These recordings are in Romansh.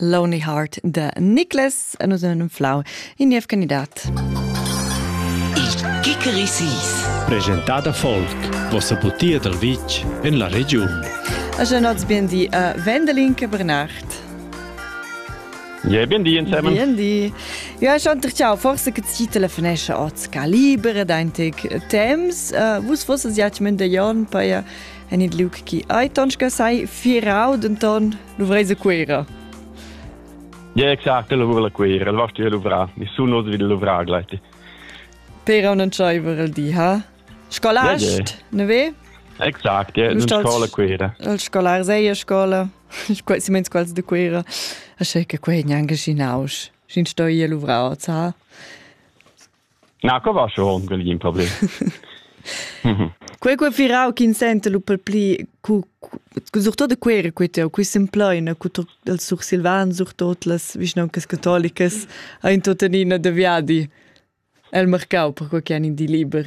Lonely Heart de Nicholas en un flau in niev candidat. Il Kikerisis. Presentada folk, vossa butia dal vitg en la regiun. A Genots biendi a Wendelin che Bernard. Ja, bien die zusammen. Bien die. Ja, ich und ciao, forse che ci telefonesce oz calibre dein tic temps. Uh, vus fosse ja mende jon per en il liug chi ei tonschga sei firau denton luvreise Cuera. Ja exact lavura la Cuera, el vasti luvra, nessun os vid luvra gleiti. Per un entscheiver el di, ha? Scolast, ja, ja. ne ve? Exact, ja, in scola Cuera. El scolar sei a scola, quasi mens quals de Cuera. A che quei gnanca ginaus. Sin sto ia luvra, ha? Na, co va schon quel in problem? Quei quei virau ch'in senta lu pel pli cu surtut quera quei teu qui s'empleina cu els sursilvans surtot las vischnauncas catolicas ein tuttenina da viadi el marcau per quei che han in di liber.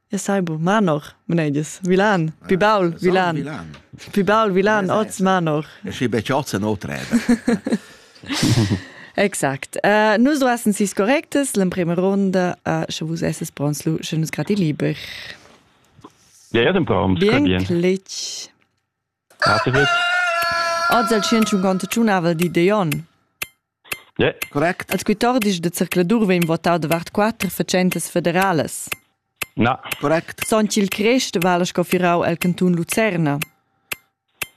Ja sai bu Manor, mneides, Vilan, pi baul Vilan. Vilan. Pi baul Vilan, oz Manor. E schi betg oz en otreda. Exakt. Uh, nus duassen sis correctes, l'emprema ronda, uh, sche vus esses pronts, lu, sche nus grati liber. Ja, ja, dem Traum, bien. Bien. Cletg. Cateret? Oz el tschientschunquanta tunavel di digl onn. Yeah. Correct. Als quittordisch de zircladur vegn votau davart quatter fatschentas federales. Na. Correct. Son ch'il crest vala scoffirau el cantun Lucerna.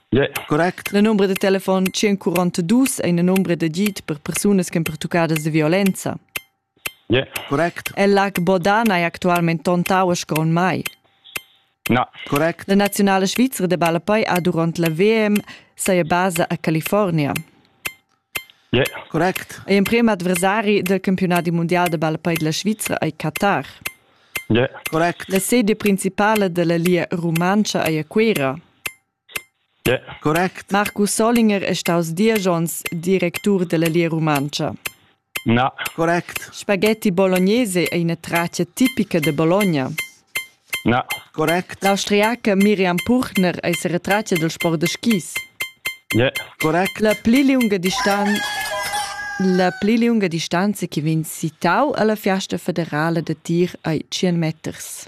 Yeah. Correct. La numero de telefon 142 è una numero de git per persunas che pertucadas de violenza. Correct. El Lag Bodana è actualmente ton tauas con mai. Na. Correct. La naziunala svizra de ballapei ha durant la VM saia basa a California. Yeah. Correct. E emprem adversari del campionati mondial de ballapei della Svizra è Qatar. Yeah. Correct. La sede principale della Lia Rumancha è a Cuera. Marcus Solinger è staus diesch onns directur dalla Lia Rumantscha. Spaghetti bolognese ei ina tratga tipica da Bologna. L'austriaca Miriam Puchner ei seretratga dal sport da skis. La pli liunga distan la pli liunga distanza che vegn citau alla fiasta federala da tir ei tschien meters.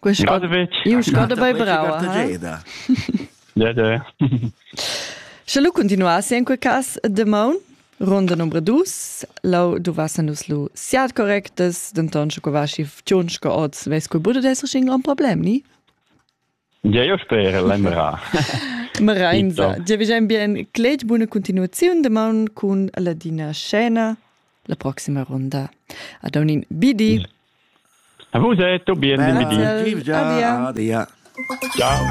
Quei scada iu scada bei brava. Ja, ja. Sche lu continuassi en quei cass de maun Ronda numero 2, lau duvassen nus lu siat correctas, denton sche quei vasci ftunsch che oz, veis quei buca d'esser schin gran problem, ni? Gio sper l'Emra. Merainza. Giavigiain bien clet buna continuaziun damaun cun Ladina Scena la proxima ronda. Ad unin bidi. A vus è tutto bien, ben bidi. Adia. Ciao.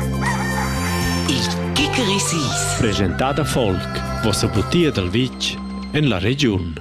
Il Kickerisis. Presentada Folk, vossa butia dal vitg en la regiun.